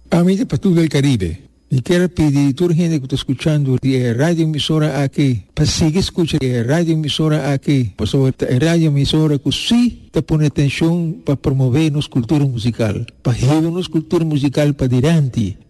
Pa mi ta pa tur el Caribe. Mi kier pidi di tur hende cu ta scuchando di e radioemisora aki pa sigui scucha di e radioemisora aki pasobra ta e radioemisora cu si ta pone atencion pa promove nos cultura musical, pa hiba nos cultura musical padilanti.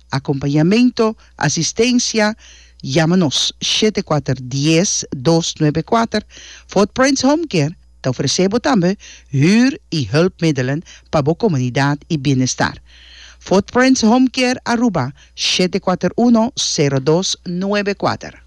Acompañamento, Asistencia, Yama nos shete kuater dies dos nuebe kuater. Fort Prince Home Care ta ofrece bo tambe huur y hulpmiddelen pa bo comunidad y bienestar. Fort Prince Home Care Aruba shete kuater uno sero dos nuebe kuater.